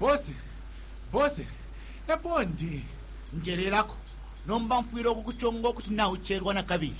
Boss, boss, epo ndi. Njelelako, nomba mfwile ukukuchonga ukuti nauchelwa nakabili.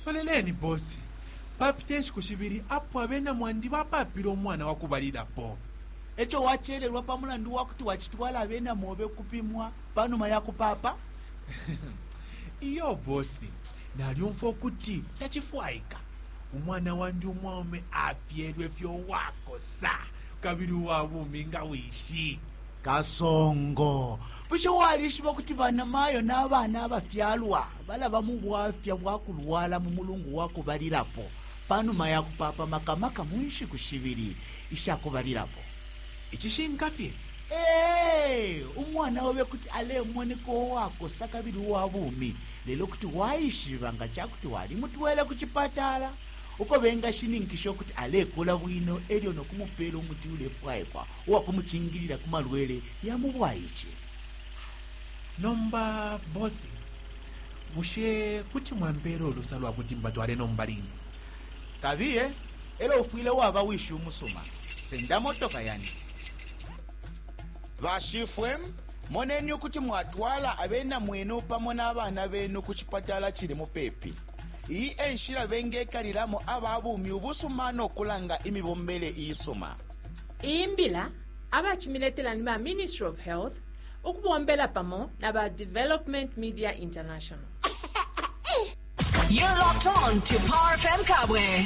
Loleleni, boss, papita inshiku shibili apo abena mwandi bapapile umwana wakubalilapo. Echo wachelelwa pamulandu wakuti wachitwala abena mobe ukupimwa panuma yakupapa? Iyo, boss, nalyumfwa ukuti tachifwaika umwana wandi umwaume afyelwefye uwakosa, kabili uwa bumi nga wishi. Kasongo, bushe walishiba ukuti banamayo na bana abafyalwa balaba mu bwafya bwa kulwala mu mulungu wa kubalilapo pa numa ya kupaapa, maka maka mu nshiku shibili isha kubalilapo? Icishinka fye, ee, umwana obe kuti alemoneka uwakosa kabili uwa bumi, lelo kuti waishiba nga ca kuti walimutwele ku cipatala. uko bengashininkisha ukuti alekula bwino e lyo no kumupeela umuti ulefwaikwa uwa kumucingilila ku malwele ya mu bwaice. Nomba bosi, bushe kuti mwampeela ulusa lwa kuti mbatwale nomba line? Kabiye, e lyo ufwile waba wishi umusuma. Senda motoka yandi. Bashifwe, moneni ukuti mwatwala abena mwenu pamo na bana benu ku cipatala cili mupepi. Iyi e nshila bengekalilamo aba bumi ubusuma no kulanga imibombele iisuma. Iyi mbila abacimiletela ni ba Ministry of Health ukubombela pamo na ba Development Media International. You're locked on to Power FM Kabwe.